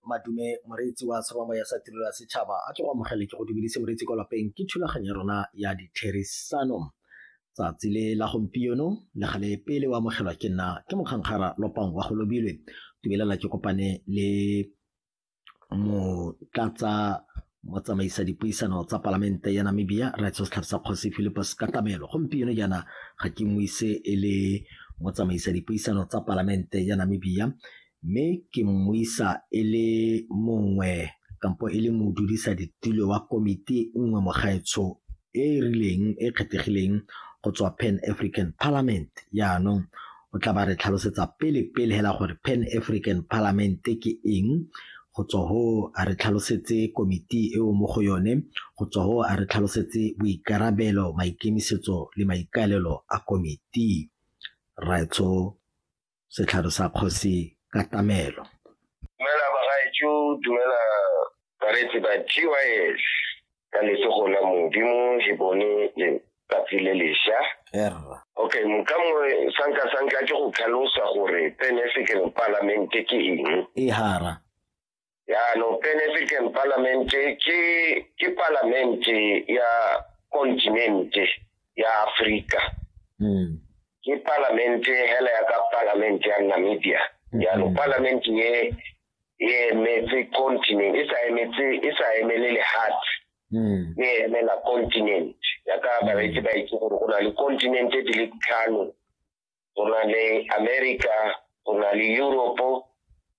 madume moreetsi wa tshwamamo ya sa tirelo ya setšhaba a tle go amogele ke go dumedise moreetsi kwa lapeng ke thulaganyo ya rona ya ditherisano tsatsi le la gompieno le gale pele o amogelwa ke nna ke mokgankgara lopang wa go lobilwe tumelela ke kopane le motlatsa motsamaisa dipuisano tsa palamente ya Namibia Raitso Setlhapisa Kgosi Philippus Katamelo gompieno jaana ga ke mo ise e le motsamaisa dipuisano tsa palamente ya Namibia mme ke mo isa e le mongwe kampo e le modudisa ditulo wa komiti nngwe mogaetsho e e rileng e kgethegileng go tswa Pan African Parliament jaanong o tla ba re tlhalosetsa pele pele hela gore Pan African Parliament ke eng go tswa ho a re tlhalosetse komiti eo mo go yone go tswa ho a re tlhalosetse boikarabelo maikemisetso le maikaelelo a komiti raetsho setlhare sa kgosi ka tamelo dumela bagaetsho dumela bareetsi ba gys ka letsogo la modimo he bone letsatsi le lesha okay moka mongwe sanka sanka ke go tlhalosa gore pan african parliament ke eng e hara yaanong pan african parliament ke ke parliament ya continent ya africa mm. ke parliament hela ya ka parliament ya namibia yaanong mm. parliament ye e emetse continent e sa emetse e sa emele lehatshe hmm. e emela continent ya ka hmm. bareetsi ba itse gore go na le continent di le tlhano go na le america go na le europe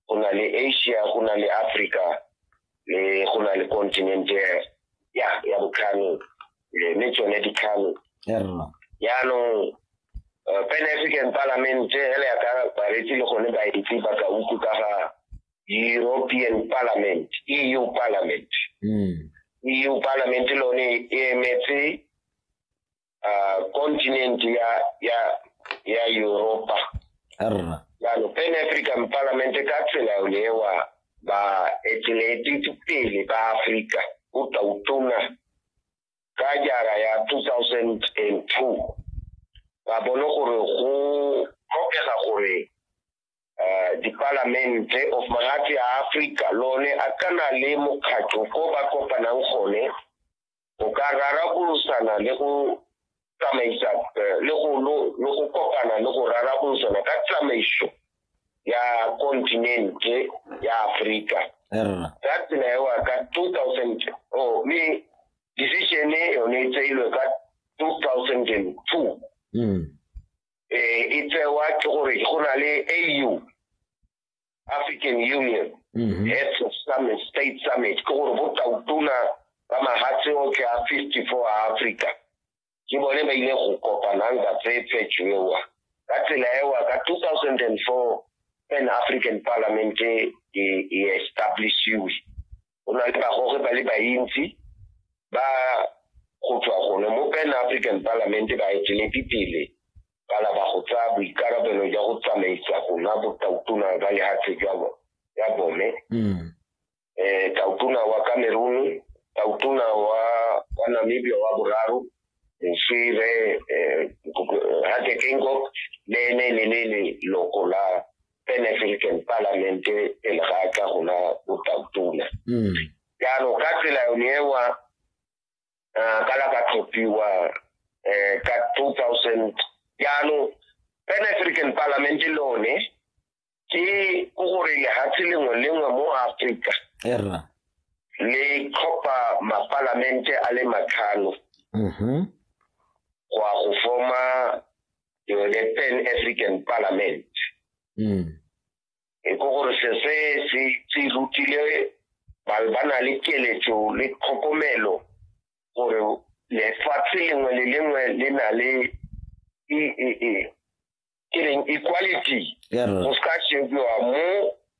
go na le asia go na le africa le go na le continent ya ya botlhano eh, le tsone dikhalo yaanong eh, pan african parliament ele ya ka baretsi le gone baetsi ba ka uku ka ga european parliament eu parliament hmm. eu parliament lone e emetse ah, continent ya ya ya europa jalo pan african parliament ka tsela yolewa ba etelete pele ba afrika o tla utona ka jara ya 2002 ba bone gore go tlhokega gore eh, dipalamente of magatse a Africa lone a kana le mokgatlho ko ba kopanang gone go ka rarabolosana le go tsamaisa eh, le go lo- le go kopana le go rarabolosana ka tsamaiso ya kontinente ya aforika erra ka tsela ewa ka 2000 oh, mme decision e yone e tseilwe ka 2002 Mm. eh, e tsewa ke gore go na le au African Union mm -hmm. Heads of Summit State Summit ke gore bo tautona ba mahatshe otlhe a 54 a Africa ke bone ba ile go kopanang ka tsephetso ewa ka tsela ewa ka 2004 pan African Parliament e, e establishiwe o na le bagoge ba le bantsi ba go tswa gone mo pan african parliament ba eteledi pele ba laba go tsaya boikarabelo jwa go tsamaisa gona botautona ba lehatshe jwa ya bone mm. eh tautona wa cameroon tautona wa wa namibia wa boraro moswire eh, eh hatekengok le ene le le loko la an African parliament pele ga a tla go na botautona hmm. jaanong ka tsela yone ewa eh, ka la ka tlhophiwa um ka two thousand jaanong an African parliament lone ke ko gore lehatshe lengwe lengwe mo africa le tlhopha mapalamente a le matlhano mm-hmm. go ya go forma ke be ke pan african parliament mm. e ko gore se se se se rutile ba ba na le keletso le tlhokomelo gore lefatshe lengwe le lengwe le na le e e e ke reng equality go se ka shebiwa mo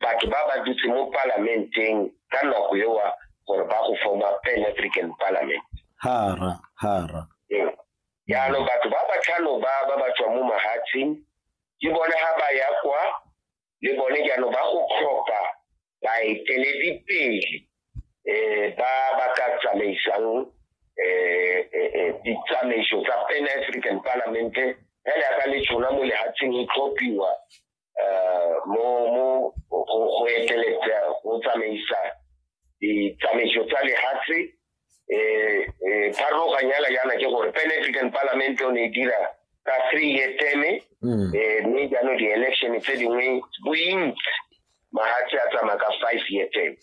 batho ba ba dutse mo palamenteng ka nako ewa gore ba go forma pan african parliament hara hara jaanong batho ba ba tlhano ba ba ba tswa mo mahatsheng ke bone ga ba ya kwa le bone jaanong ba go tlhopha baeteledipele um ba ba ka tsamaisang um ditsamaiso tsa pan african parlamente fela yaka le tshona mo lehatsheng e tlhophiwa eh, mo mo go eteletsa go tsamaisa ditsamaiso tsa lehatshe eh, eh, pharologanya yana yana ke gore pan african parliament o ne e dira ka three year teme mm. eh, mme jaanong di-election tse dingwe bointsi mahatshe a tsamaya ka five year teme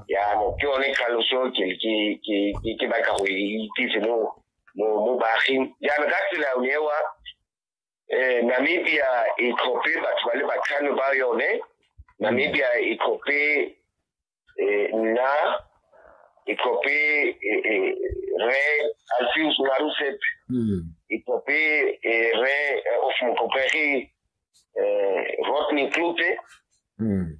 yaano ke yone tlhaloso ke batla go e itsise mo baaging jaanong ka tsela ewa eh Namibia e tlhophe batho ba le batlhano ba yone Namibia e tlhophe eh nna e tlhophe eh, eh, re Alfius Marusep mm. e tlhophe eh, re eh, of motlhophegi eh Rodney Klute mm.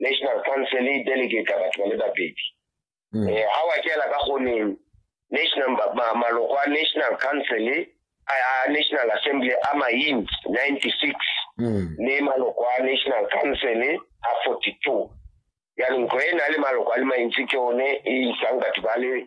national council e delegate batho ba le babedi um hmm. eh, ga wa kela ka goneng national maloko a national council a national assembly a main ninety six hmm. le maloko a national council a forty two jaanong ko e na le maloko a le mantsi ke one e isang batho ba le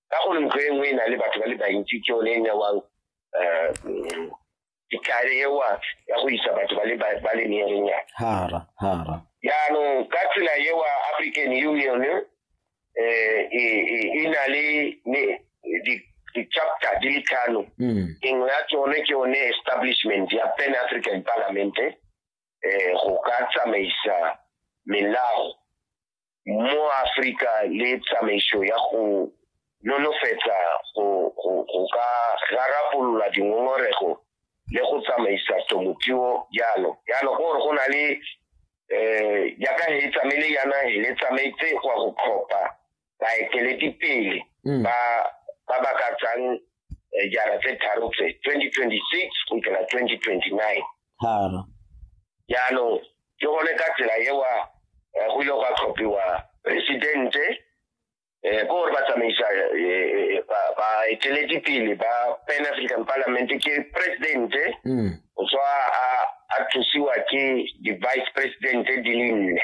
ka gore ntlo e nngwe e na le batho ba le bantsi ke yone e newang um ditlhare ewa ya go isa batho ba le ba ba le meerenyana hara hara jaanong ka tsela ewa african union eh, e e- e na le ne- di- di-chapter di le tlhano Mm. engwe ya tsone ke yone establishment ya pan african parliament eh go ka tsamaisa melao mo Afrika le tsamaiso ya go nolofetsa go ka rarabolola dingongorego le go tsamaisa temothuo jalo jalo ke gore go na le um jaaka he tsamaile yana le tsamaetse go ya go tlhopha baeteledipele mm. ba ba ba ka tsang eh, jara tse tharo tse twenty twenty six go fitlhela twenty twenty nine jaanong ke gone ka tsela ewa eh, go ile gwa tlhophiwa presidente um eh, ko gore ba tsamaisa eh, baeteledipele ba pan african parliament ke presidente mm. o tswa a thusiwa ke di-vice presidente di le nne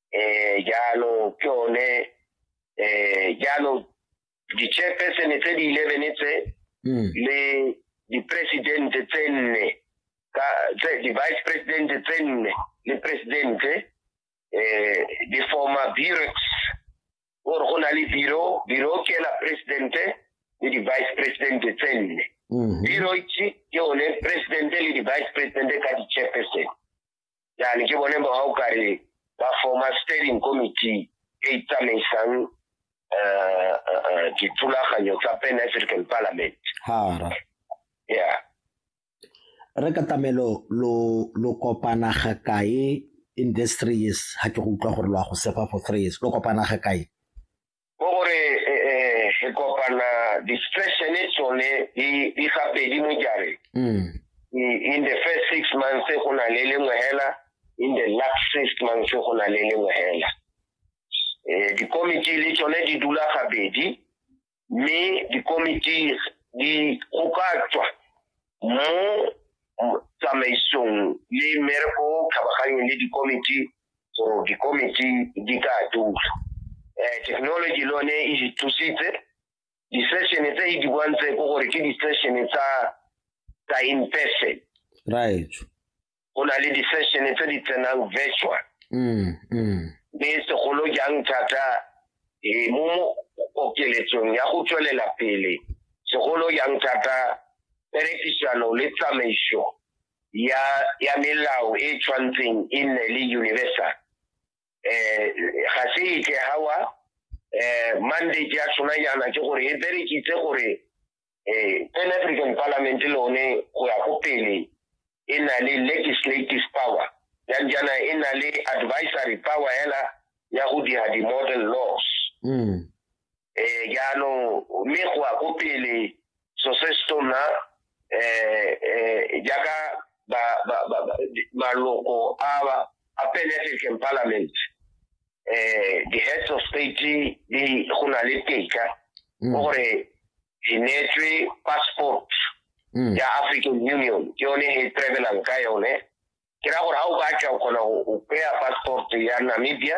eh, jalo ke one eh, jalo di-chairpersone tse di eleven tse hmm. le di-presidente tse nne di-vice presidente tse nne le presidente eh, di forma burex gore go na le biro biro ke la presidente le di-vice presidente tse nne hmm. biro ke one presidente le di-vice presidente ka di-chairpersone yani ke bone ba o kare ba forma steering committee e e tsamaisang eh, eh, eh, dithulaganyo tsa pan african parliament hara ya re ka tamelo lo lo kopana ga kae in this three years ha ke go utlwa gore lo a go sefa for three years lo kopana ga kae ke gore e, e, re kopana di-stressene tsone di gabedi mo jareng mm. in the first six months go na le lengwe hela in the last six months go na le lengwe hela um dikomiti le tsone di dula gabedi mme dikomiti di go ka tswa mo tsamaisong le mmereko o kgabaganyeng le dikomiti so dikomiti di ka dula um technology le one e di thusitse di-session tse e di bontse ko gore ke di-session tsa tsa in person right go na le di-session tse di tsenang virtual mm, mm. mme segolo jang thata eh, mo okeletsong ya go tswelela pele segolo jang thata perekisano le tsamaiso ya ya melao e tshwantseng e nne le universal eh ga se itse hawa eh mandate ya tshwana yana ke gore e berekitse gore eh Pan African Parliament lone go ya go pele e na le legislative power yang jana e na le advisory power hela ya go dira di-model laws mm. eh yalo mme go a go pele so se se tona eh eh jaaka ba ba ba maloko a ba a penetrate parliament eh the heads of state di go na le teka mm. gore di netswe passport mm. ya African Union ke yone he travelang ka yone ke ra gore ha o batla o kgona go kry passport ya Namibia